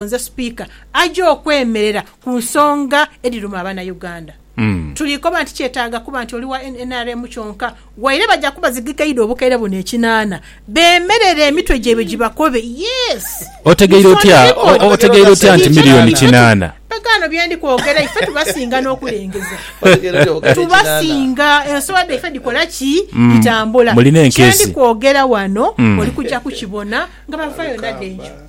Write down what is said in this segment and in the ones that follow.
Nze Sipiika aja okwemerera ku nsonga edhiruma abanauganda. Tuli koba nti kyetaaga kuba nti oli wa nrm kyonka, waire baja kuba zigekeidwa obukaire buno ekinaana, bemerere emitwe gyaibwe gibakobe. Yes! Otegeire otya otegeire otya nti milioni kinaana? Bagaano bye ndi kwogera ife tubasinga n'okulengeza. Tubasinga. Ensolo dhaife dhikola ki? Dhitambula. Kye ndi kwogera wano oli kuja kukibona nga bava yona dh'eyo.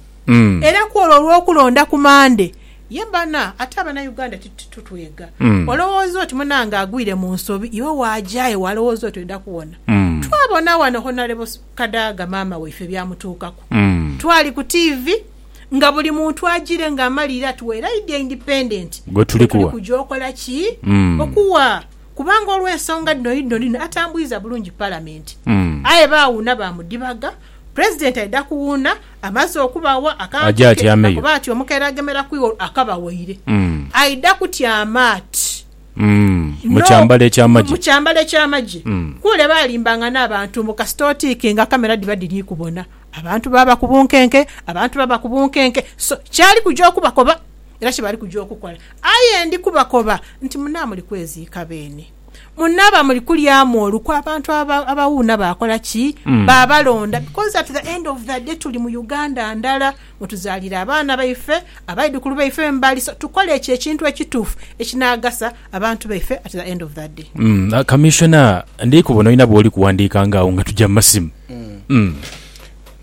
era kwolwo olwokulonda ku Mande. Ye bana ate abana Uganda titutwega olowooza oti munange agwire mu nsobi iwe waja ewo alowooza oti oida kuwona. Twabona wano Honarebo Kadaga maama waife byamutuukaku twali ku TV nga buli muntu ajire nga amaliire ati we laidi independent gwe tuli kuja okola ki? Okuwa kubanga olwensonga dhino yidhino dhino atambwiiza bulungi palamenti aye bawuuna bamudhibaga president aida kuwuuna. Amaze okubawa akantu ke, akuba ati, Omukeera agemeraku iwe akabaweire. Aidha kutyama ati no mu kyambalo eky'amagye. Kule baalimbangana abantu mbu kasita otiikinga kamera dhiba dhiri kubona. Abantu baaba ku bunkenke, abantu baba ku bunkenke. So, kyali kuja okubakoba era kye bali kuja okukola. Aye ndi kubakoba nti munaamuli kweziika beene. munaaba muli kulyamu olukwe abantu abawuuna bakola ki mm. babalonda because at the end of the day tuli mu uganda ndala mwetuzalira abaana baife abaidukulu baife wembali so tukole ekyo ekintu ekituufu ekinagasa abantu baife at the end of the day mm. uh, commissioner ndikubono olina bwoli kuwandiika ngaawo nga tujja mumasimu mm. mm.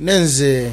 nenze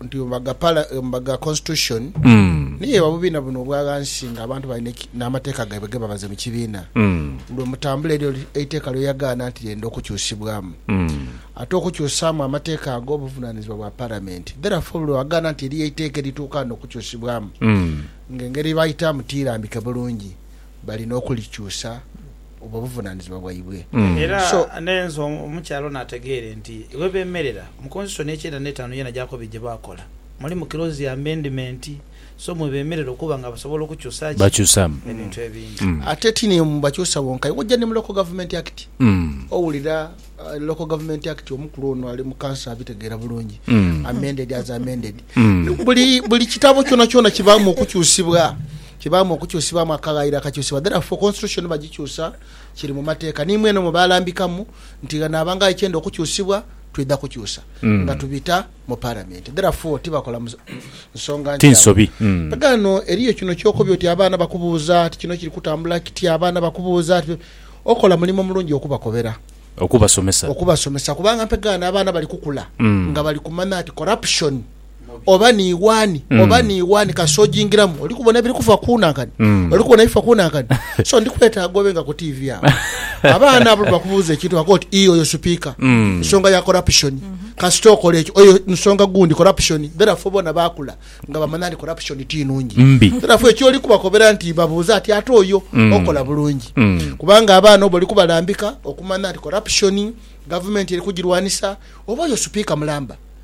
nti ombaga constitution niyo eba bubina buno obwa ghansi nga abantu balina n'amateeka gaibwe gebabaze mu kibiina lwe mutambula eryo eiteeka lyoyagaana nti lyenda okukyusibwamu ate okukyusaamu amateeka ago buvunanizibwa bwa palamenti therefore lwe wagaana nti eriyo eiteeka erituukaana okukyusibwamu nga engeri yebaayitaamu tiirambike bulungi balina okulikyusa obwo buvunanizibwa bwaibwe. Era nenze omukyala ono ategeere nti webemerera mu constitution ekyenda n'etaanu yona gyakobiri gyebakola mulimu clause ya amendment so mwebemerera okuba nga basobola okukyusa ki ebintu ebindi. Ate ti ni mubakyusa bonka aye wojja ni mu local government act owulira local government act omukulu ono ali mu council abitegeera bulungi amended as amended buli buli kitabo kyonakyona kibaamu okukyusibwa. Kibaamu okukyusibwamu akaghayiro akakyusibwa therefore constitution bagikyusa kiri mu mateeka ni mweno mwe baalambikamu nti ghanaaba nga ekyenda okukyusibwa twidha kukyusa nga tubita mu palamenti therefore tibakola nsonga Ti nkyamu. nsobi. Mm. Ghano eriyo kino ky'okobye oti abaana bakubuuza ati kino kiri kutambula kiti abaana bakubuuza ati okola mulimo mulungi okubakobera, Okubasomesa. okubasomesa kubanga mpegaano abaana bali kukula nga bali kumanya nti corruption oba ni wani oba ni wani kasita ojingiramu oli kubona ebiri kufa kunankani oli kubona ebifa kunankani so ndi kwetaaga obe nga ku TV awo abaana abo bakubuuza ekintu bakoba oti ii oyo supika nsonga ya corruption kasita okola ekyo oyo nsonga gundi corruption therefore bona bakula nga bamanya nti corruption ti nungi therefore ekyoli kubakobera nti babuuze ati ate oyo okola bulungi kubanga abaana obo oli kubalambika okumanya nti corruption gavumenti eri kugirwanisa oba oyo supika mulamba.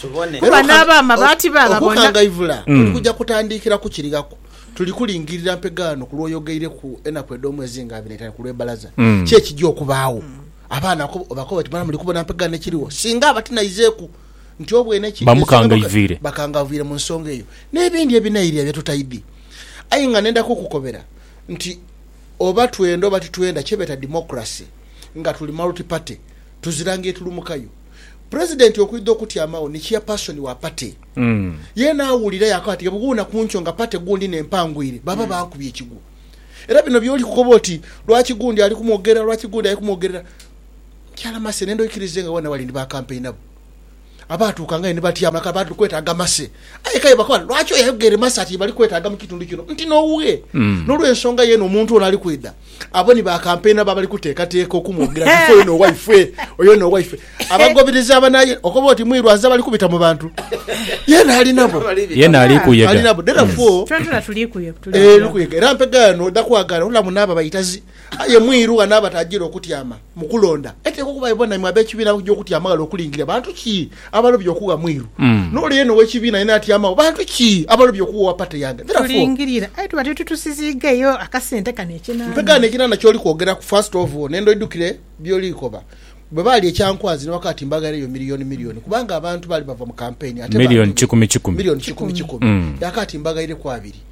tubone. Kuba n'abaama baati baababona. Okukangaivula kuli kuja kutandiikira ku kiri ghaku. Tuli kulingirira mpegaano ku lw'oyogeireku enaku edh'omwezi nga abiri n'eitaanu ku lw'ebbalaza. Ki ekija okubaagho? Abaana obakoba oti, Mwana muli kubona mpegaano ekirigho? Singa aba tinaizeeku nti obwene ki ekisinga bakangaivuire mu nsonga eyo. N'ebindi ebinairira bye tutaidhi. Aye nga nenda kukukobera nti oba twenda oba titwenda kye beeta democracy nga tuli multi party tuzira ngeri tulumukayo. President okwidha okutyamagho ni chairperson wa party yeena awulira yakoba ati bwebughuuna kunkyo nga party gundi n'empangwire baba bankubye ekigwo. Era bino byoli kukoba oti lwaki gundi ali kumwogerera lwaki gundi ali kumwogerera mukyala Mercy nenda oikirize nga wena wali ni ba campaigner bo abaatuukangayo ni batyama kale bali kwetaaga Mercy aye kale bakoba lwaki oyo ayogere Mercy ati ye bali kwetaaga mu kitundu kino nti n'oughe. N'olwensonga yeena omuntu ono ali kwidha Abo ni ba kampeyina abo abali kuteekateeka okumwogira nti ife oyo n'owaifwe, oyo n'owaifwe. Abagoberezi aba naye okoba oti mwiru azira bali kubita mu bantu, yeena ali nabo. Yeena ali kuyega. Ali nabo. Therefore, Twenatwena tuli kuyega. Tuli ee, kuyega. kuyega. Era mpegaano odha kwagala ola muno abo abaitazi. Aye mwiru ghano aba tajiire okutyama mu kulonda. Eteekwa okuba ibo naimwe ab'ekibiina abakuja okutyama ghale okulingirira bantu ki? Abalobye okugha mwiru n'ole yeena ow'ekibiina yeena atyamagho. Bantu ki abalobye okugha owa pate yange? Therefore. Tulingirira, aye tuba titutusiziigeyo akasente kano ekinana. Nkaganha ekinana ky'oli kwogeraku, first of all, n'endhodo idhukire by'oli koba. Bwe baalya ekyankwanzi ni wakaati mbaghaireyo milioni milioni kubanga abantu baali bava mu kampeyini ate baandobye. Milioni kikumi kikumi. Milioni kikumi kikumi. Yakaati mbaghaireku abiri.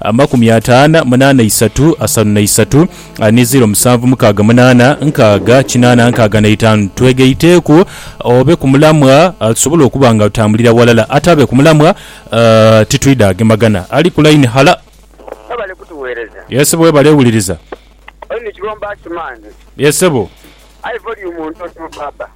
amakumi ataana munaana isatu asanu na isatu ni ziro musanvu mukaaga munaana nkaaga kinaana nkaaga na itaanu. Twegaiteeku obe ku mulamwa tusobole okuba nga tutambulira ghalala. Ataabe ku mulamwa titwidha agemagana. Ali ku line, hala. Mwebale kutuweereza. Yes sebo webale wuliriza. Oli ni kigho mba simange. Yes sebo. Aye volume ntono baaba.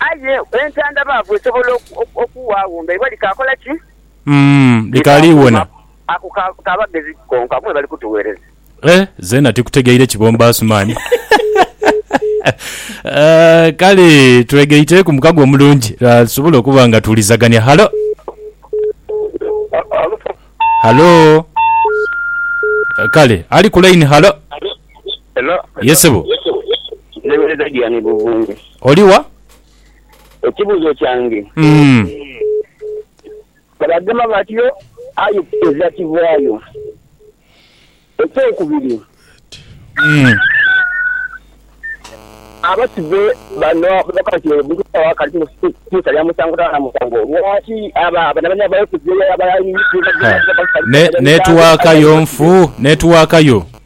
Aye entandabaavu esobola okuwaagho nga ibwa likaakola ki? Likaali iwona. Ako ka bagezi konka mwebali kutugheereza. Eh, zeena tikutegeire kibombo Asuman. Kale twegaite ku mukago omulungi tusobole okuba nga tuwulizagania. Halo. Halo. Kale ali ku line. Halo. Hello. Yes sebo. Ntebereza Diane Buvunge. Oli wa? Ekibuzo kyange. Bagema batyo aye eza kivaayo. Ekyokubiri. Abasibe bano ababakoba nti omuntu bwaba akali mukisa lya musango taba na musango lwaki aba banabani abayokezebwa abaali ku. Network yo nfu. Network yo.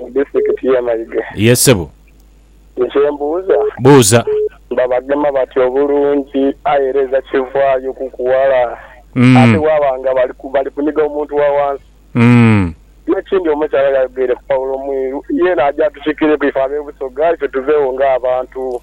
mu disitikiti y'e Mayuge. Ye ssebo. Nze kye mbuuza. Buuza. Babagema batya obulungi aye era eza kivaayo kuku wala ate bwaba nga bali kuniga omuntu wa wansi? N'ekindi omukyala yayogeire ku Paulo Mwiru, yeena aje atukikireku ife ab'e Busoga ife tuveegho ng'abantu.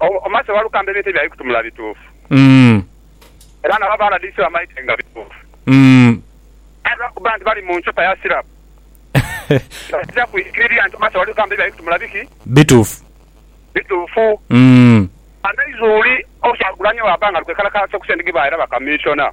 Omase Walukamba ebintu ebyo abikutumula bituufu era nabo aba rdc bamaite nga bituufu aye lwakuba nti bali mu nchupa ya sirapu tibaija kwikiriria nti Omase Walukamba ebyo abikutumula biki? Bituufu. Bituufu. Amaizi uli, Kyagulanyi bwaba nga ali kwekalakaasa ku sente dhebaaira bakamiishona.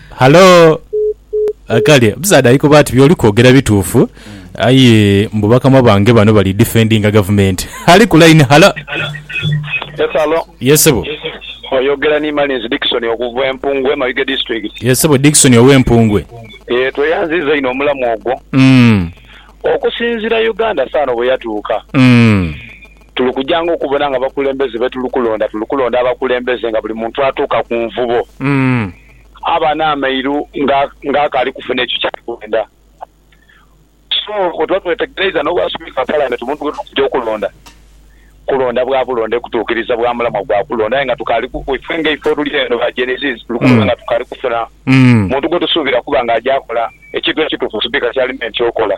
Halo! Kale omusaadha ali koba ati byoli kwogera bituufu aye mbu bakama bange bano bali defendinga gavumenti. Ali ku line, halo! Yes halo. Yes sebo. Oyogera ni Malins Dickson okuva e Mpungwe Mayuge District. Yes sebo Dickson owe Mpungwe. Yee tweyanziza inho omulamu ogwo. Okusinzira Uganda saano bweyatuuka, tuli kujanga okubona nga abakulembeze betuli kulonda tuli kulonda abakulembeze nga buli muntu atuuka ku nvubo. aba n'amairu nga akaali kufuna ekyo kyali kwenda. So, bwetuba twetegereiza n'obwa Sipiika wa Palamenti omuntu gwetuba tuja okulonda, kulonda bwa bulonde kutuukiriza bwa mulamwa gwa kulonda aye nga tukaali ku, ife nga ife oluli eno ba Gen Zs tuli kulonda nga tukaali kufuna muntu gwetusuubira okuba nga aja kola ekintu ekituufu Sipiika kyalina enkya okola.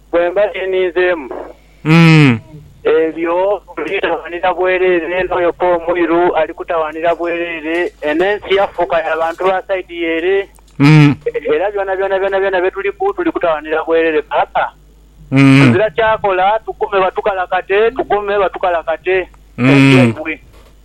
Bwe mba ni ninzeemu ebyo, nditawaanira bwereere n'oyo pa omwiru ali kutawaanira bwereere, eno ensi yafuuka ya bantu ba saidi ye ere, era byonabyona byonabyona bye tuliku tuli kutawaanira bwereere. Paapa, tuzira kyakola, tugume batukalakate, tugume batukalakate ensi yaibwe.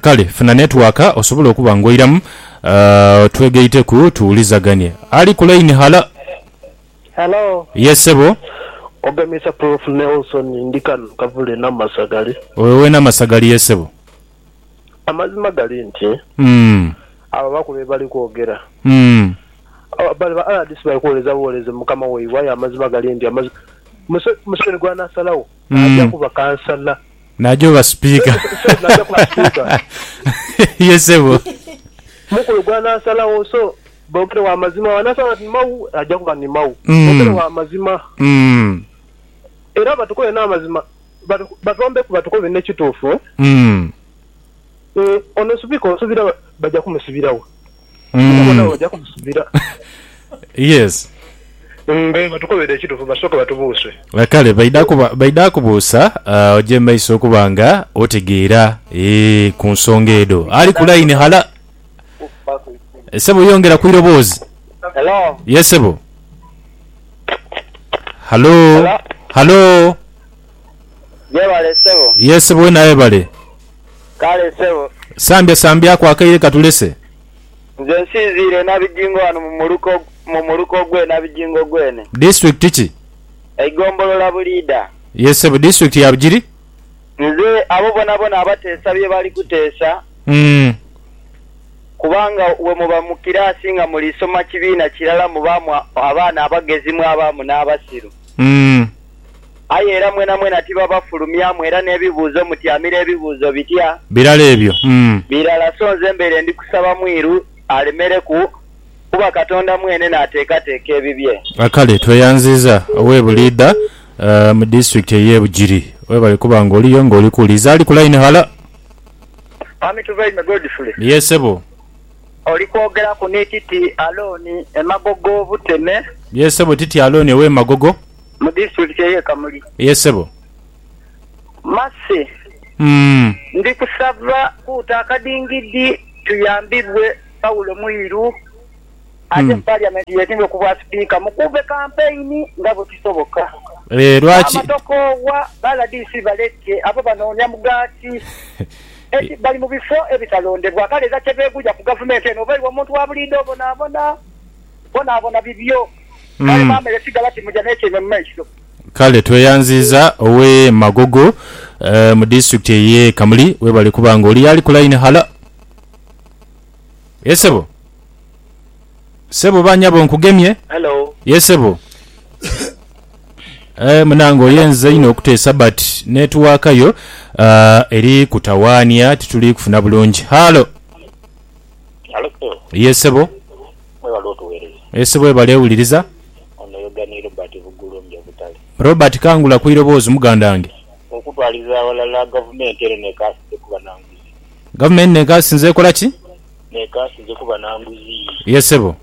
Kale funa netwaka osobole okuba ng'oiramu twegaiteku tuwulizaganie. Ali ku layini, halo. Halo. Yes, ssebo. Ogemesa Prof. Nelson. Ndi kano Kavule Namasagali. Oyo ow'e Namasagali ye ssebo? Amazima gali nti abo abaku be bali kwogera. Bano ba rdc bali kwoleza bwoleze Mukama waibwe aye amazima gali nti Museveni gw'anaasalagho Naaja kuba kansala. Naaja oba sipiika. Sorry, naaja kuba sipiika. Ye sebo. Mukulu gw'anaasalagho. So, boogere wa mazima. Bw'anaasalawo ati ni mau, aja kuba ni mau. Boogere wa mazima. Era batukobe n'amazima. Batwambeku batukobe n'ekituufu. Ono sipiika onsuubira baja kumusibiragho? yes mbe batukobere ekitufu basoke batubuuse kale baidha kubuusa uh, oje maiso okuba nga otegeera eh, ku nsonga edo ali ku line hala sebo yongera ku iroboozi Hello. ye sebo halo halo Yebale ssebo. Yee ssebo wena webale. Kale ssebo. Sambya sambyaku akaire katulese. Nze nsinziire e Nabijingo wano mu muluka mu muluka ogw'e Nabijingo gwene. Disitulikiti ki? Eigombolola Buliida. Yee ssebo disitulikiti ya Bugiri. Nze abo bonabona abateesa bye bali kuteesa. Uhmm. Kubanga we muba mu kiraasi nga muli soma kibiina kirala mubaamu abaana abagezi mwabaamu n'abasiru. Uhmm. Aye era mwenamwena tibabafulumyamu, era n'ebibuuzo mutyamira ebibuuzo bitya? Birala ebyo, mm. Birala, so nze mbaire ndi kusaba mwiru alemereku, kuba Katonda mwene n'ateekateeka ebibye. A Kale tweyanziiza owe Buliidha mu Disitulikiti ey'e Bugiri. Webale kuba nga oliyo nga oli kuwuliriza. Ali ku layini, halo? Mwami Tubaime Godfrey. Yee, ssebo. Oli kwogeraku ni Titi Alooni e Magogo Buteme. Yee, ssebo, Titi Alooni ow'e Magogo. Mu disitulikiti ey'e Kamuli. Yee ssebo. Mercy, Umm. Ndi kusaba kuuta akadingidi tuyambibwe Paulo Mwiru aje mu Parliament yesimbe ku bwa Sipiika mukuube kampeyini nga bwe kisoboka. Eeh lwaki? Maama tokoowa, ba rdc baleke, abo banoonya mugaati. Eki, bali mu bifo ebitalondebwa kale era kye beeguya ku Gavumenti eno oba iwe omuntu wa buliidho obonaabona. Bonabona bibyo. Kale bamere sigala timuja n'etyaime mu maiso. Kale tweyanziiza ow'e Magogo mu disitulikiti ey'e Kamuli. Webale kuba nga oli y'ali ku layini. Halo. Ye sebo. Sebo oba nyabo nkugemye. Halo. Ye sebo. Aye munange oyenze inho okuteesa but netiwaakayo eri kutawaania tituli kufuna bulungi. Halo. Halo sebo. Ye sebo. Mwebale otuwereza. Ese webale wuliriza. Ono yoga ni Robert Bugulumbya Butale. Robert kangula ku iroboozi mugandange. Okutwaliza aghalala gavumenti eno nekaasinze kuba na nguzi. Gavumenti nekaasinze ekola ki? Nekaasinze kuba na nguzi. Ye sebo.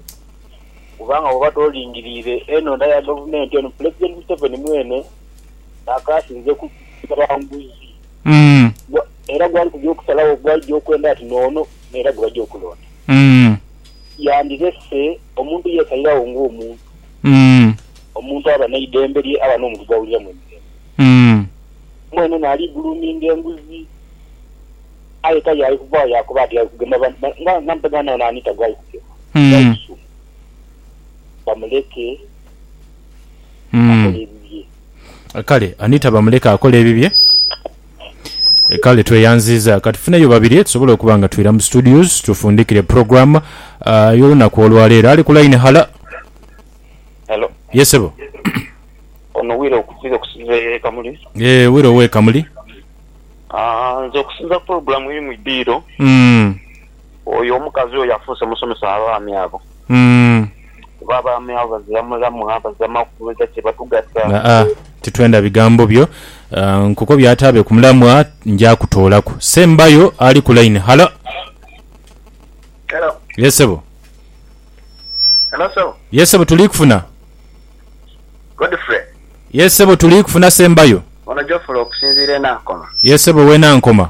Kubanga woba tolingiriire enonda ya gavumenti eno Pulezidenti Museveni mwene nakaasinze kuba nguzi. Era gwali kugya okusalagho gwaija okwenda ati noono era gwebaja okulonda. Yandirese omuntu yeesaliragho ng'omuntu. Omuntu aba n'eidembe lye, aba n'omuntu gw'awuliramu emirembe. Mwene naali guluuminga enguzi, aye tali ali kuvaagho yaakoba ati, Ali kugema bantu bange, nga mpegaano nawo naani ta gw'ali kugema? Ghali kusuma. Bamuleke akole ebibye. Kale, ani ta bamuleke akole ebibye? Kale tweyanziiza. Ka tufuneyo babiri tusobole okuba nga twira mu studios tufundikire program ah, y'olunaku olwa leero. Ali ku line, hala. Hello. Ye ssebo. Ono Wire okusinza okusinza e Kamuli. Yee, Wire ow'e Kamuli. Aa, nze okusinza program eri mu idhiro. Mm. Oyo omukazi oyo afuuse musomesa w'abaami abo. Kuba abaami abo bazira mulamwa, bazira makung'aga kye batugasa. Aa, titwenda bigambo byo. Nkukobye ataabe ku mulamwa, nja kutoolaku. Sembayo ali ku line. Halo. Helo. Ye ssebo. Helo ssebo. Ye ssebo tuli kufuna. Godfrey. Ye ssebo tuli kufuna Sembayo. Ono Geoffrey okusinziira e Nankoma. Ye ssebo ow'e Nankoma.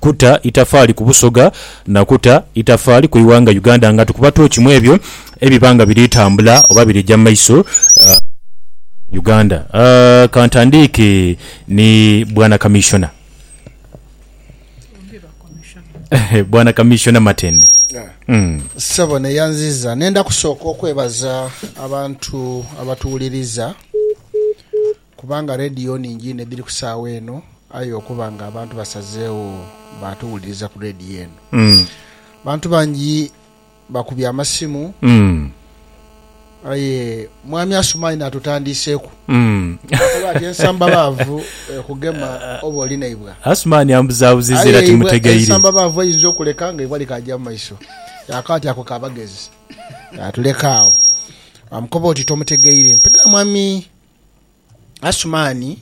kuta itafaali ku Busoga na kuta itafaali ku ighanga Uganda nga tukuba tooki mu ebyo ebiba nga biri tambula oba biri ja mu maiso mu Uganda. Ka ntandiike ni Bwana Kamissiona. Bwana Kamissiona Matende. Ssebo ne yanziza nenda kusooka okwebaza abantu abatuwuliriza. Kubanga leediyo ningi inho edhiri ku saagha eno, aye okuba nga abantu basazeegho baatuwuliriza ku leediyo eno, abantu bangi bakubye amasimu. Aye Mwami Asumani n'atutandiiseku n'akoba ati, Ensamba baavu ekugema oba oli naibwa. Asumani ambuzaabuzizza era timutegeire. Aye ensamba baavu eyinza okuleka nga eibwa likaagya mu maiso. Ako ati ako k'abagezi. N'atuleka agho. Baamukoba oti, Tomutegeire. Mpegha Mwami. Asumani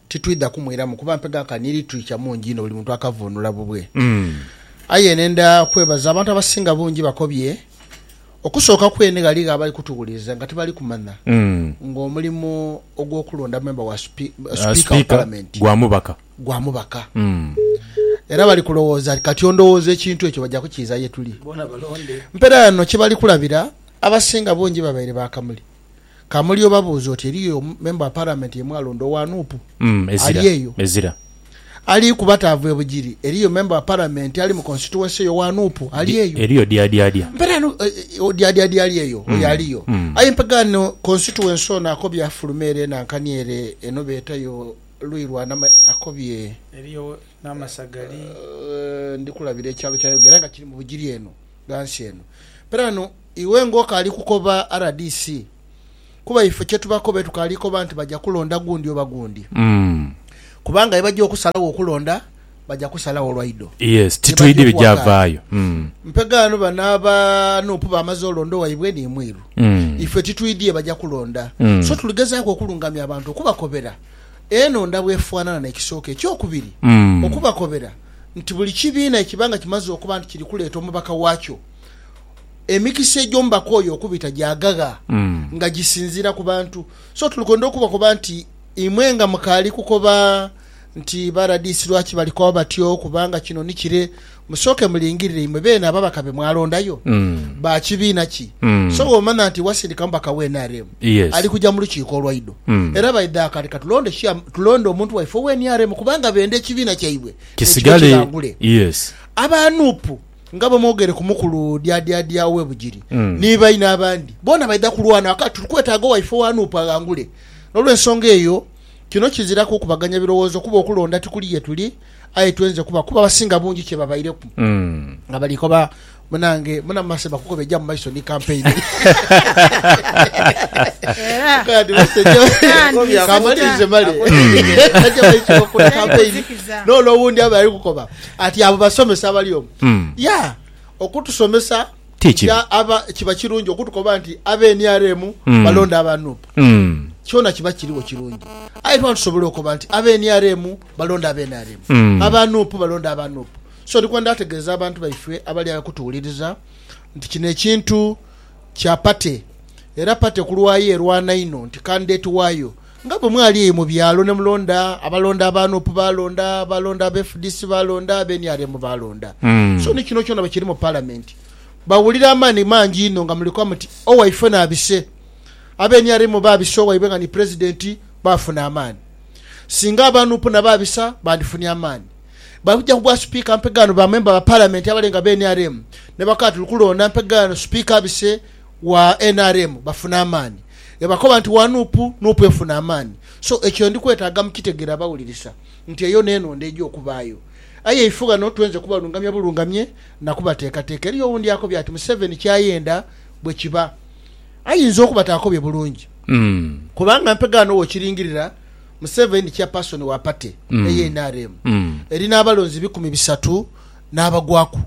titwidha kumwiramu kuba mpega ka ni litirica mungi inho buli muntu akavunula bubwe. Aye nendha kwebaza abantu abasinga bungi bakobye. Okusooka kwene ghaligho abali kutuwuliriza nga tibali kumanya ng'omulimu ogw'okulonda memba wa Sipiika wa Palamenti gwa mubaka. Era bali kulowooza nti kati ondowooza ekintu ekyo baja kukiiza ye tuli. Mpeera ghano kye bali kulabira, abasinga bungi babaire ba kamuli. Kamuli obabuuze oti eriyo Member wa Parliament yemwalonda owa nup ali eyo? Ali kuba taava e Bugiri, eriyo Member wa Parliament ali mu constituency eyo owa nup ali eyo? Mpita no Odyadyadya ali eyo? Oyo aliyo. Aye mpegha no constituency ono akobye afulume ere enankani ere eno beeta yo luyi lwa Nama akobye. Eriyo Namasagali? Ndikulabira ekyalo kya Yogera nga kiri mu Bugiri eno. ghansi eno. Perano iwe nga okaali kukoba rdc kuba ife kyetubakoba etukaali koba nti baja kulonda gundi oba gundi kubanga bwebaja okusalagho okulonda baja kusalagho lwaido yebaja okuwakana mpegaano bano aba nup bamaze olonda owaibwe ni mwiru ife titwidhi yebaja kulonda so tuligezaaku okulungamya abantu okubakobera Eno nda bw'efaanana n'ekisooka eky'okubiri okubakobera nti buli kibiina ekiba nga kimaze okuba nti kiri kuleeta omubaka waakyo, emikisa egy'omubaka oyo okubita gyaghagha nga gisinziira ku bantu. So tuli kwenda okubakoba nti imwe nga mukaali kukoba nti ba RDC lwaki bali koba batyo kubanga kino ni kire, Musooke mulingirire imwe beene ababaka be mwalondayo ba kibiina ki. So bw'omanha nti wasindika mubaka wa nrm, ali kuja mu lukiiko olwaidho era baidha aka leka tulonde tulonde omuntu waife owa nrm kubanga benda ekibiina kyaibwe nekibe kighangule. Aba nup nga bwe mwogere ku mukulu Dyaadyaadya ow'e Bugiri ni baine abandi, boona baidha kulwana aka tuli kwetaaga owaife owa nup aghangule. N'olwensonga eyo, kino kiziraku kukubaganya birowoozo kuba okulonda tikuli ye tuli. aye twenze kuba kuba abasinga bungi kyebabaireku nga bali koba munange muna mase bakukoba eja mumaiso ni campaign Era Kadi mase Kandi ja- kamalirize male Aja maiso bakula campaign kuzikiza. nono owundi aba ali kukoba ati abo basomesa abali omu Mm. ya okutusomesa Ti kibi. ya aba kiba kirungi okutukoba nti abe nrm Mm. balonda aba nup Mm. kyona kiba kiriwo kirungi aye tuba tusobola okoba nti abe nrm balonda aba nrm, aba nup balonda aba nup. So ndi kwenda ategeeza abantu baife abali agho kutuwuliriza nti kino ekintu kya party era party ku lwayo erwana inho nti candidate waayo nga bwe mwali eyo mu byalo ne mulonda abalonda aba nup baalonda, baalonda aba fdc baalonda, aba nrm baalonda. So ni kino kyona bwe kiri mu Palamenti bawulira amaani mangi inho nga muli koba muti owaifena abise, aba nrm baabisa owaibwe nga ni Pulezidenti baafuna amaani. Singa aba Nup na ba Bisa bandifunye amaani, bali kuja kugwa Sipiika mpegaano ba memba ba Palamenti abale nga be nrm ne bakoba tuli kulonda mpegaano Sipiika Bise wa nrm bafune amaani. Bwebakoba nti wa Nup, Nup efuna amaani. So ekyo ndi kwetaaga mukitegere abawulirisa nti eyo n'enondha eja okubaayo. Aye ife ghano twenze kubalungamya bulungamye na kubateekateeka. Eriyo owundi akobye ati Museveni ky'ayenda bwe kiba. ayinza okuba taakobye bulungi kubanga mpega ghano wokiringirira Museveni Chairperson wa party eye nrm eri n'abalonzi ebikumi bisatu n'abagwaku.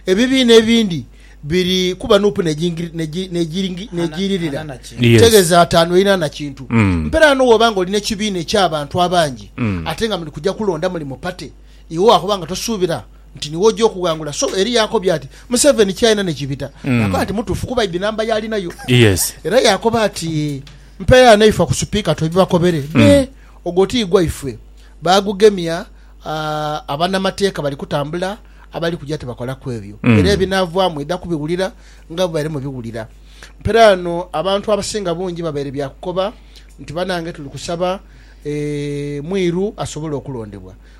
Ebibiina ebindi biri kuba nup n'egiiririra kitegeza ataanu erina na kintu. Mpera ghano woba nga olina ekibiina eky'abantu abangi ate nga muli kuja kulonda muli mu party iwe wakoba nga tosuubira nti niwe oja okughangula so eri yakobye ati museveni kyalina nikibita mm. nakoba nti mutufu kuba idi namba yalinayo yes. era yakoba ati mpeya neifa ku supika twebibakobere mm. be ogwo tigwaifwe bagugemya uh, abanamateeka bali kutambula abali kuja tebakola kwebyo mm. era ebinavwamu eda kubiwulira nga bubaire mubiwulira mpera ano abantu abasinga bungi babaire byakukoba nti banange tuli kusaba e, mwiru asobole okulondebwa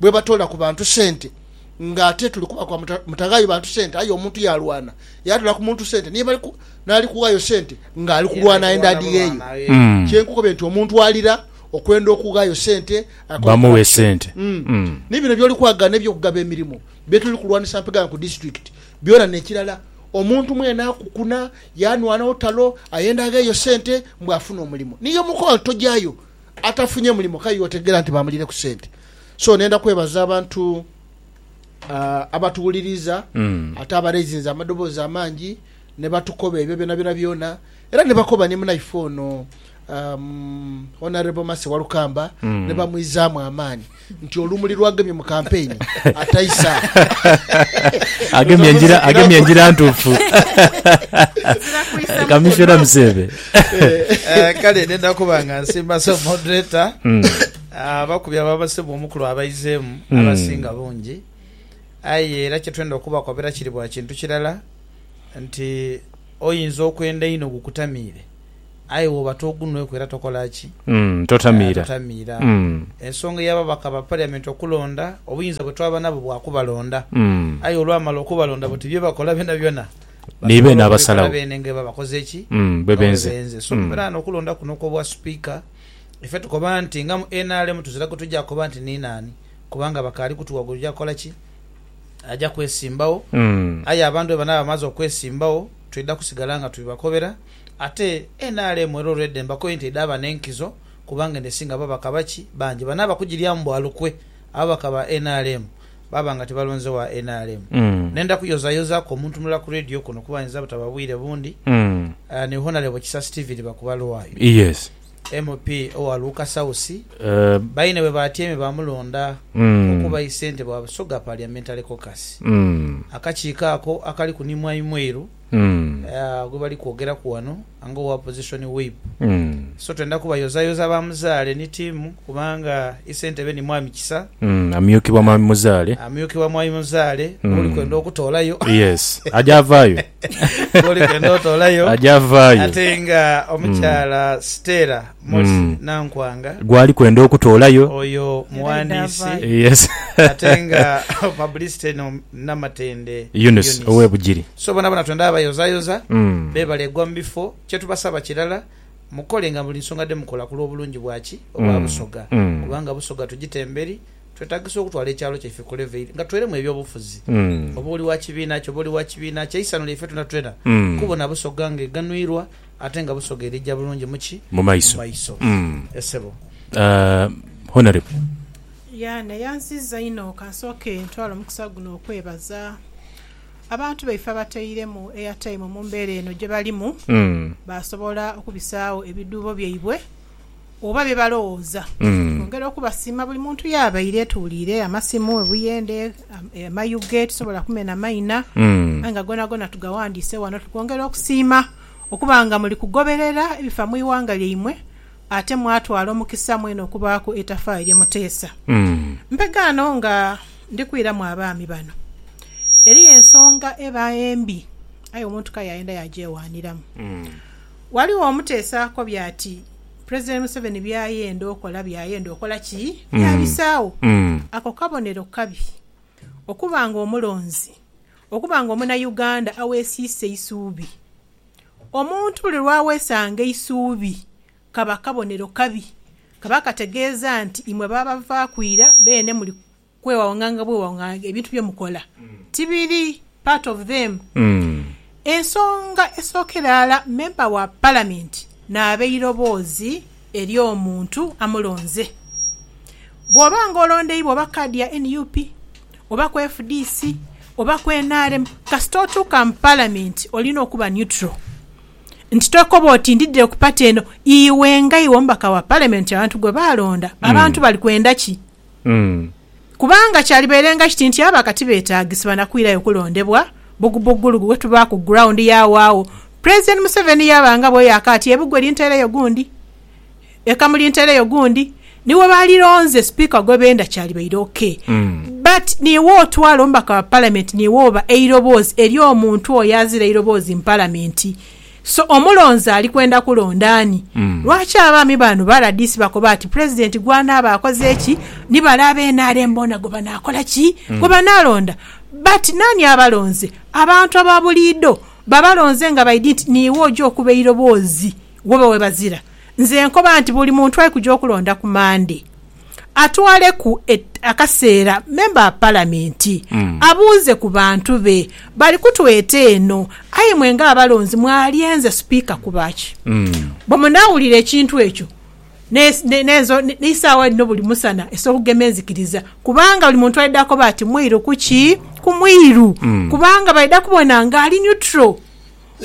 bwebatoola ku bantu sente nga ate tuli kubakwa mutaghaayo bantu sente aye omuntu yaalwana yaatoola ku muntu sente niye naali kughaayo sente ng'ali kulwana enda adhigheeyo. Kye nkukobye nti omuntu alira okwenda okughaayo sente akole corruption. Ni bino by'oli kwagaana eby'okugaba emirimo bye tuli kulwanisa mpegha ku disitulikiti byona n'ekirala omuntu mwene akukuna yaanwana olutalo ayenda agheeyo sente mbu afune omulimo niye omukowa nti tojaayo. atafunye mulimo kale iwe otegeera nti baamuliire ku sente so nenda kwebaza abantu ah, abatuwuliriza ate abaraizinze amadoboozi amangi ne batukoba ebyo byona byona byona era ne bakoba ni munaife ono um, Honourable Mercy Walukamba ne bamwizaamu amaani Nti olumuli lwagemye mu kampeyini ataisa. Agemye engira ntuufu. Kamissiona Museeve. Eh, kale nenda kuba nga nsimba so moderator hmm. ah, abakubi ababasebwa omukulu abaizeemu hmm. abasinga bungi aye era kyetwenda okubakobera kiri bwa kintu kirala nti oyinza okwenda ino gukutamiire aye woba togunhweku era tokola ki? Totamiira. Totamiira. Ensonga ey'ababaka ba Parliament okulonda, obuyinza bwe twaba nabwo bwa kubalonda, aye olwamala okubalonda buti bye bakola byonabyona basobola okubikola beene nga bwe babakoze ki? Nga bwe benze. So mbeera nga n'okulonda kuno okw'obwa Sipiika, ife tukoba nti nga mu nrm tuzira gwe tugya kukoba nti ni naani kubanga bakaali kutuwa gwe tugya kukola ki? Agya kwesimbagho. Aye abantu bwe banaaba bamaze okwesimbagho, twidha kusigala nga tubibakobera. Ate nrm era olwedha embakoyo nti edhaba n'enkizo kubanga edhesinga ababaka baki bangi bano abakugiryamu bwa lukwe ababaka ba nrm baba nga tibalonze wa nrm. Nenda kuyozayozaaku omuntu mulala ku Radio kuno kuba ayinza butaba bwire bundi, ni Honalebo Kisa Steven Bakubalwayo, MP owa Luuka South. Baine bwe baatyaime baamulonda okuba aye ssentebe wa Busoga Parliamentary Caucus, akakiiko ako akaliku ni Mwami Mwiru. gwe bali kwogeraku ghano nga owa Opposition Whip. So twenda kubayozayoza ba Muzaale ni tiimu kubanga Isentebe ni Mwami Kisa. Amyukibwa Mwami Muzaale. Amyukibwa Mwami Muzaale gwoli kwenda okutoolayo. Yes. Aja avaayo. Gwoli kwenda otoolayo. Aja avaayo. Ate nga omukyala Stella Mosi Nankwanga gwali kwenda okutoolayo. Oyo mughandiisi ate nga publicity no Namatende Eunice ow'e Bugiri. So bonaboona twendha bayozayoza beebale gwa mu bifo. Kye tubasaba kirala mukole nga buli nsonga dhe mukola ku lw'obulungi bwa ki? Obwa Busoga kubanga Busoga tugite emberi. Twetagisa okutwala ekyalo kyaife ku level nga tweremu eby'obufuzi. Oba oli wa kibiina ki oba oli wa kibiina ki, eisanhu lyaife twena twena kubona Busoga nga eghanhwirwa. ate nga busoga erija bulungi mu ki? Mu maiso. Eeh sebo. Aah Honourable. Yaa neyanziza inho kansooke ntwale omukisa guno okwebaza abantu baife abateiremu airtime mumbera eno gyebalimu basobola okubisaawo ebidhuubo byaibwe oba bye balowooza. Twongera okubasiima buli muntu yaabaire, tuwuliire amasimu, obuyende, amayuge, tisobola kumena maina aye nga gonagona tugawandiise wano. Tuli kwongera okusiima okuba nga muli kugoberera ebifa mu ighanga lyaimwe ate mwatwala omukisa mwene okubaaku eitafaayo lye muteesa. Mpegaano nga ndi kwiramu abaami bano, eriyo ensonga eba embi aye omuntu kayayenda yaagyewaaniramu. Ghaligho omuteesaako by'ati Pulezidenti Museveni by'ayenda okola by'ayenda okola ki? By'abisaagho. Ako kabonero kabi okuba ng'omulonzi okuba ng'omunauganda aweesiisa eisuubi. Omuntu buli lw'aweesanga eisuubi kaba kabonero kabi, kaba kategeeza nti imwe baabavaaku ira beene muli Kwewaunga nga bwewaunga ebintu bye mukola tibiri part of them. Ensonga esookera ghala memba wa Palamenti naaba eiroboozi eri omuntu amulonze. Bw'oba nga olondeibwa oba kaadi ya nup, oba ku fdc, oba ku nrm, kasita otuuka mu Palamenti olina okuba neutral nti tokoba oti ndidhire ku pati eno. Iwe nga iwe omubaka wa Palamenti abantu gwe baalonda, abantu bali kwenda ki? Kubanga kyalibeerenga kiti nti abo akati beetaagisibwa na kwirayo kulondebwa bbugubuggulugu bwe tubaaku ground y'awaagho President Museveni yaaba nga bweyaka ati ebugwe lintereyo gundi, ekamu lintereyo gundi. Ni bwe baalironze Sipiika gwe benda kyalibaire ok. But niiwe otwala omubaka wa Palamenti niiwe oba eiroboozi eri omuntu oyo azira eiroboozi mu Palamenti. So omulonzi ali kwenda kulonda ani? Lwaki abaami bano ba rdc bakoba ati Pulezidenti gw'anaaba akoze ki, ni bale aba nrm boona gwe banaakola ki, gwe banaalonda? But naani abalonze? Abantu aba buliido babalonze nga baidhi nti niiwe oja okuba eiroboozi wobe webazira. Nze nkoba nti buli muntu ali kuja okulonda ku Mande. atwaleku akaseera memba wa Palamenti abuuze ku bantu be bali kutweta eno aye mwe ng'abalonzi mwalyenze Sipiika kuba ki? Bwe munaawulira ekintu ekyo n'eisaawa dhino buli musana esobola okugema enzikiriza kubanga buli muntu aidha koba ati mwiru ku ki? Ku mwiru kubanga baidha kubona ng'ali neutral.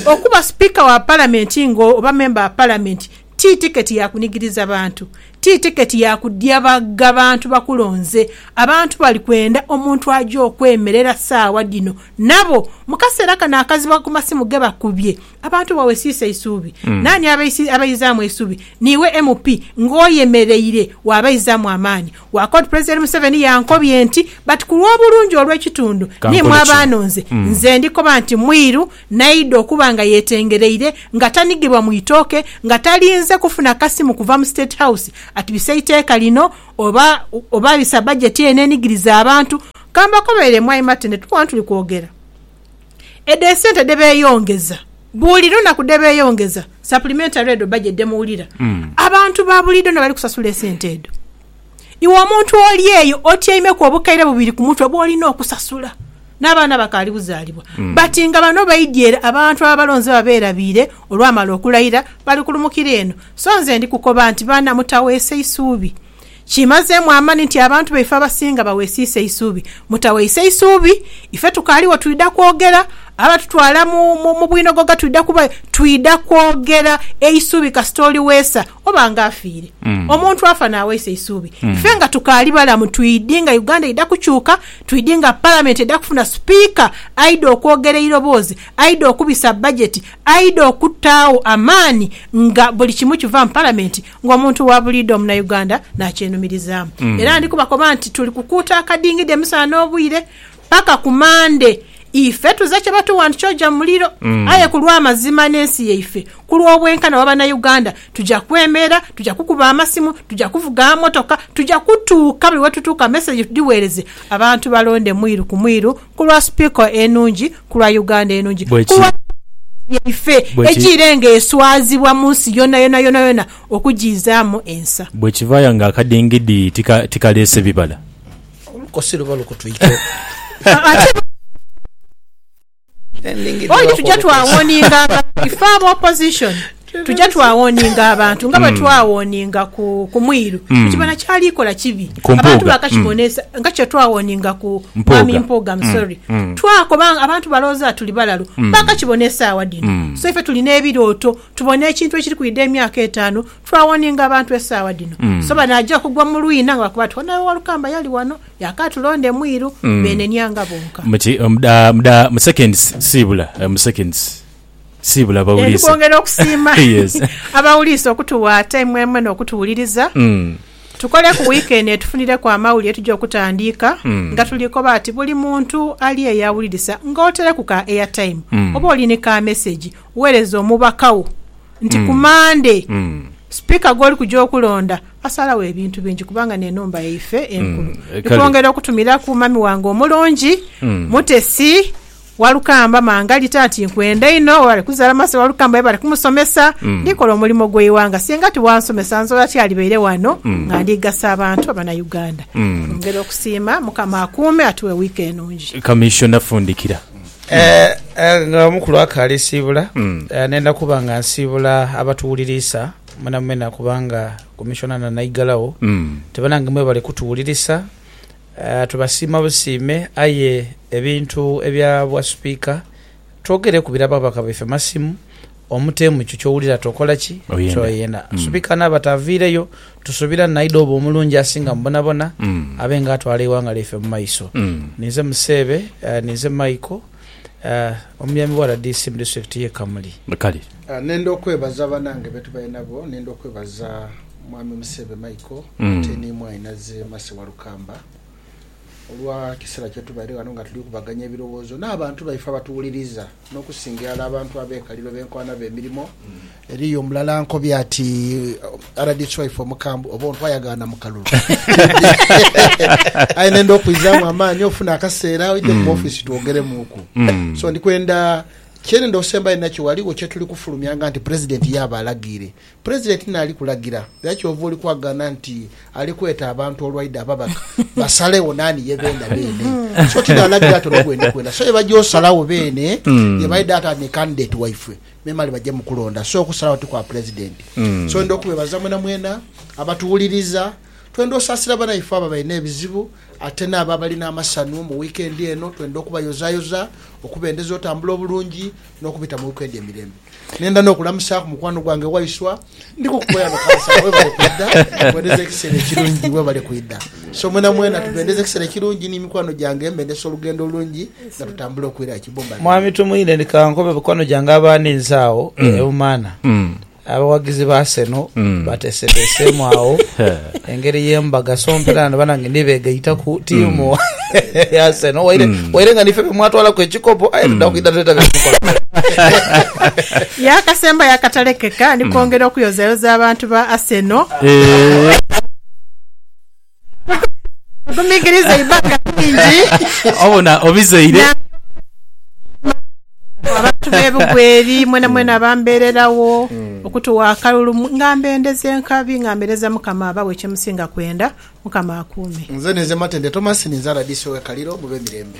Okuba Sipiika wa Palamenti nga oba memba wa Palamenti ti tiketi ya kunigiriza bantu, ti tiketi ya kudyabaga bantu bakulonze. Abantu bali kwenda omuntu aja okwemerera saawa dhino nabo. Mu kaseera kano akazibu ku masimu ge bakubye, abantu bawesiisa eisuubi. Naani abaizaamu eisuubi? Niiwe MP ng'oyemereire waabaizaamu amaani. Gwa kod President Museveni yankobye nti but ku lw'obulungi olw'ekitundu ni mwa baanonze, nze ndi koba nti mwiru naidha okuba nga yetengereire nga tanigirwa mu itooke nga talinze kufuna kasimu kuva mu State House at bise iteeka lino oba oba bisa budget eno enigiriza abantu. Kambakobere mwai Martin tukoona tuli kwogera. Edho esente dhebeyongeza buli lunaku dhebeyongeza supplementary edho budget dhemuwulira abantu babulido nabali kusasula esente edho iwe omuntu oli eyo otyaimeku obukaire bubiri kumutwe bwolina okusasula nabaana bakaali buzalibwa but nga bano baidye ere abantu ababalonze baba berabiire olwamala okulaira bali kulumukira eno so nze ndikukoba nti baana mutaweesa isuubi Kimazeemu amani nti abantu baife abasinga bawesiisa eisuubi. Mutaweise isuubi, ife tukaaliwo twidha kwogera, abatutwala mu bwinogogha twidha kuba, twidha kwogera eisuubi kasita oli weesa oba nga afiire. Omuntu afa n'aweisa eisuubi. Ife nga tukaali balamu twidhi nga Uganda eidha kukyuka, twidhi nga Palamenti eidha kufuna Sipiika aidha okwogera eiroboozi, aidha okubisa bajeti, aidha okutaagho amaani nga buli kimu kiva mu Palamenti. Ng'omuntu wa buliidho Omunauganda naakyenumirizaamu era ndi kubakoba nti tuli kukuuta akadingidi emisana n'obwire paka ku Mande. Ife tuze kye batuwa nti kyoja mu muliro aye ku lw'amazima n'ensi yaife, ku lw'obwenkana bwa Banauganda tuja kwemeera, tuja kukuba amasimu, tuja kuvuga amotoka, tuja kutuuka buli wetutuuka mesegi tudhiweereze abantu balonde mwiru ku mwiru Ku lwa Speaker enungi, ku lwa Uganda enungi, ku lwa Palamenti yaife ejiire nga eswazibwa mu nsi yonayona yonayona okujiizaamu ensa. Bwe kivaaya nga akadingidi tikaleese bibala. Olukosi luba lukutwikeku. Oti tuja twawoninga nga ife aba Opposition. Tuja twawoninga abantu nga bwe hmm. twawoninga ku, ku mwiru mm. kukibona kyali kola kibi abantu bakakibonesa mm. nga kye twawoninga ku mwami mpuuga hmm. msori mm. mm. twakoba abantu balooza tuli balalu mm. bakakibona esaawa dino mm. so ife tulina ebirooto tubona ekintu ekiri kwida emyaka etaano twawoninga abantu esaawa dino mm. so banaja kugwa mu lwina nga bakuba ti onawe walukamba yali wano yakatulonda emwiru mm. benenianga bonka mu seconds sibula eh, mu seconds Siibula abawuliise. Ndi kwongera okusiima abawuliise okutuwa taimu emwe n'okutuwuliriza. Tukole ku wiiki eno etufunireku amawulire tuje okutandiika nga tuli koba ati buli muntu ali eyo awulirisa ng'otereku ka airtime oba oli ni ka mesegi weereze omubaka wo nti ku Mmande Sipiika gw'oli kuja okulonda asalawo ebintu bingi kubanga n'enhumba yaife enkulu. Ndi kwongera okutumiraku mami wange omulungi Mutesi Walukamba, Mangali taati nkwenda inho, webale kuzala masa Walukamba webale kumusomesa, ndikola omulimo gwe iwanga singa tiwansomesa nzola tyalibaire wano nga ndi gasa abantu abana Uganda. Twongera okusiima, mukama akuume atuwe week enungi. Kamissiona fundikira. Eeh nga omukulu akaali siibula nenda kuba nga nsiibula abatuwuliriisa mwenamwena kubanga Commissioner na Naighalagho te banange mwebale kutuwulirisa Tubasiima busiime aye ebintu ebya bwa supika twogere kubira ababaka baife masimu omutemu kyo kyowulira tokola ki kyoyenda supika naba taviireyo tusubira naidha oba omulungi asinga mubonabona abe nga atwala eighanga lyaife mumaiso ninze museebe ninze Michael omuyambi wa rdc mudisitulikiti ye Kamuli. Nenda okwebaza banange betubaire nabo, nenda okwebaza Mwami Museebe Michael ate ni Mwainaze Mercy Walukamba olwa kisera kyetubaire ghano nga tuli kubaganya ebirowoozo n'abantu baife abatuwuliriza n'okusinga irala abantu abekaliro benkoana bemirimo. Eriyo omulala ankobye ati rdc waife omukambwe oba ontwa yagaana mu kalulu aye nenda okwizamu amaani ofune akaseera oidhe ku office twogeremuuku so ndikwenda Kyerenda osembayo nakyo, ghaligho kye tuli kufulumyanga nti Pulezidenti yaaba alagiire. Pulezidenti naali kulagira, era kyova oli kwagaana nti ali kweta abantu olwaidha ababaka basalegho naani ye beenda beene. So ti naalagira ati ono gwendi kwenda. So ye baja osalagho beene ye baidha ati ani candidate waifwe, memale baje mu kulonda. So okusalagho ti kwa Pulezidenti. So ndidha okubeebaza mwenamwena abatuwuliriza. Twenda osaasira banaife abo abalina ebizibu. Ate n'abo abali n'amasanhu mu wiikendi eno twenda okubayozayoza okubendeza otambula obulungi n'okubita mu wiikendi emirembe. Nenda n'okulamusaaku mukwano gwange Waiswa. Ndi kukukoya no kansala. Webale kwidha kubendeza ekiseera ekirungi. Webale kwidha so mwenamwena. Tubendeza ekiseera ekirungi ni mikwano gyange. Mbendesa olugendo olungi nga tutambula okwira e Kibumba. Mwami Tumwine, ni ka nkobe mikwano gyange abaaniinze agho e Bumaana. Abawagizi ba Arsenal bateeseteeseemu agho engeri ye mbaga so mpeera nano banange ni beegaitaku tiimu ya Arsenal waire waire nga niife be mwatwalaku ekikopo aye tudha kwidha tuleeta bye mukola. Yaakasembayo akatalekeka ni kwongera okuyozayoza abantu ba Arsenal. Agumikiriza eibbanga lingi. Obona obizaire. Abantu b'ebugweri mwenamwena bambeereragho okutuwa akalulu nga mbendeza enkabi nga mbereza Mukama abawe kyemusinga kwenda. Mukama akuume. Nze ninze Matende Thomas ninze rdc we Kaliro mube mirembe.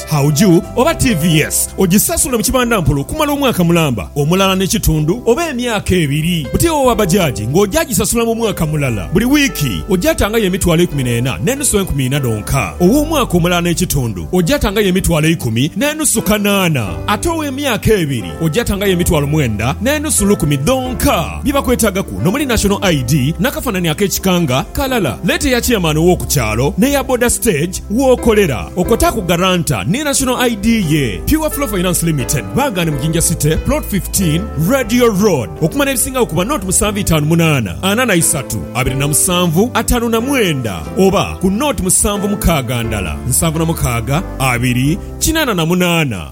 Hauju oba TVS ogisasula mu kibandampola okumala omwaka mulamba, omulala n'ekitundu oba emyaka ebiri. Buti owa bajaji ng'oja gisasula mu mwaka mulala. Buli wiiki oja tangayo emitwalo eikumi n'ena n'enusu enkumi ina dhonka. Ow'omwaka omulala n'ekitundu oja tangayo emitwalo eikumi n'enusu kanaana. Ate ow'emyaka ebiri oja tangayo emitwalo mwenda n'enusu lukumi dhonka. Bye bakwetagaku n'omuli National ID n'akafanani ak'ekika nga kalala. Leeta eya Chairman ow'oku kyalo n'eya Boda Stage. Wookolera okwo taaku garanta ni National ID ye. Pure Flow Finance Limited baagane mu Jinja City, Plot 15, Radio Road. Okumala ebisingagho kuba nought musanvu itaanu munaana ana na isatu abiri na musanvu ataanu na mwenda oba ku nought musanvu mukaaga ndala nsanvu na mukaaga abiri kinaana na munaana.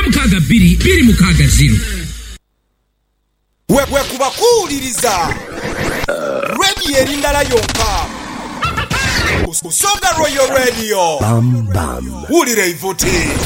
mukaaga bbiri bbiri mukaaga ziro. Bwekuba kuwuliriza Radio eri ndala yonka Busoga Royal Radio. Wulira eivuti.